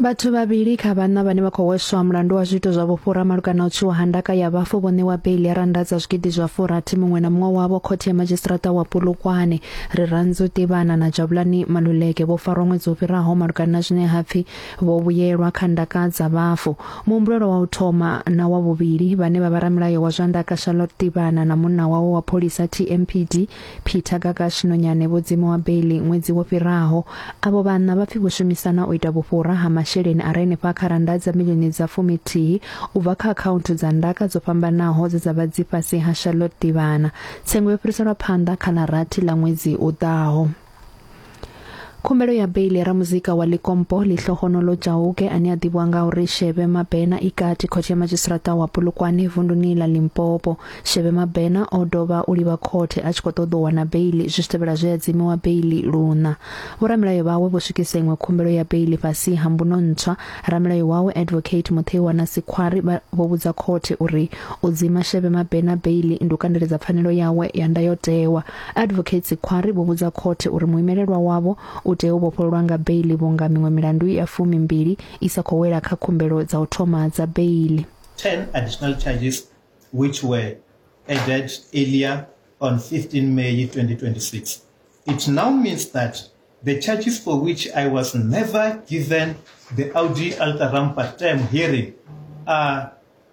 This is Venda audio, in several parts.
Vhathu vhavhili kha vhaṋa vhane vha khou hweswa mulandu wa zwiito zwa vhufhura malugana u tswiwa ha ndaka ya vhafu vho ṋewa beili ya rannda dza zwigidi zwa furathi muṅwe na muṅwe wavho khothe ya madzhisiṱiraṱa wa Polokwane. Rirantzu Tivhana na Jabulani Maluleke vho farwa ṅwedzi wo fhiraho malugana na zwine ha pfi vho vhuyelwa kha ndaka dza vhafu. Muhumbulelwa wa u thoma na wa vhuvhili vhane vha vha ramilayo wa zwa ndaka Charlotte Tivhana na munna wawe wa pholisa TMPD Peter Gagash Nonyane vho dzimiwa beiḽi ṅwedzi wo fhiraho. Avho vhanna vha pfi vho shumisana u ita vhufhura ha masheleni a re henefha kha rannda dza milioni dza fuminthihi u bva kha akhaunthu dza ndaka dzo fhambanaho dze dza vha dzi fhasi ha Charlotte Ḓivhana. Tsengo yo fhiriselwa phanḓa kha ḽa rathi ḽa ṅwedzi u ḓaho. khumbelo ya beili ya ramuzika wa likompo lihlohonolo jauke ane a ḓivhiwa nga uri shebe mabena i kati khothe ya madzhisiṱiraṱa wa polokwane vunduni ḽa limpopo shebe mabena o dovha u livha khothe a tshi khou ṱoḓa u wana beili zwi tshi tevhela zwe a dzimiwa beili luna vhoramilayo vhawe vho swikisa iṅwe khumbelo ya beili fhasi ha mbuno ntswa ramilayo wawe advocate mutheiwa na sikhwari vho vhudza khothe uri u dzima shebe mabena beili ndi u kandeledza pfanelo yawe ya ndayotewa Advocates Khwari vho vhudza khothe uri muimelelwa wavho u tea u vhofhololwa nga beiḽi vhunga miṅwe milandu ya fumi mbili i sa khou wela kha khumbelo dza u thoma dza beiḽi. 10 additional charges which were added earlier on 15 May 2026. It now means that the charges for which I was never given the Audi Alta Rampa term hearing are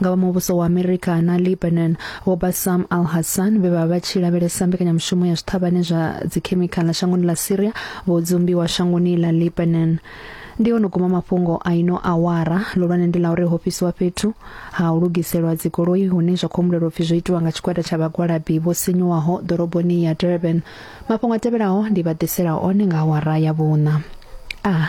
nga vha muvhuso wa America na Lebanon vho Bassam al-Hassan vhe vha vha tshi lavhelesa mbekanyamushumo ya zwithavhane zwa dzikhemikhala shangoni ḽa Syria vho dzumbiwa shangoni ḽa Lebanon ndi ono guma mafhungo a ino awara lulwane ndi la uri ho fhisiwa fhethu ha u lugiselwa dzigoloi hune zwa khou humbulelwa upfi zwo itiwa nga tshigwada tsha vhagwalabi vho sinyuwaho ḓoroboni ya Durban mafhungo a tevhelaho ndi vha ḓisela one nga awara ya vhuṋa a ah.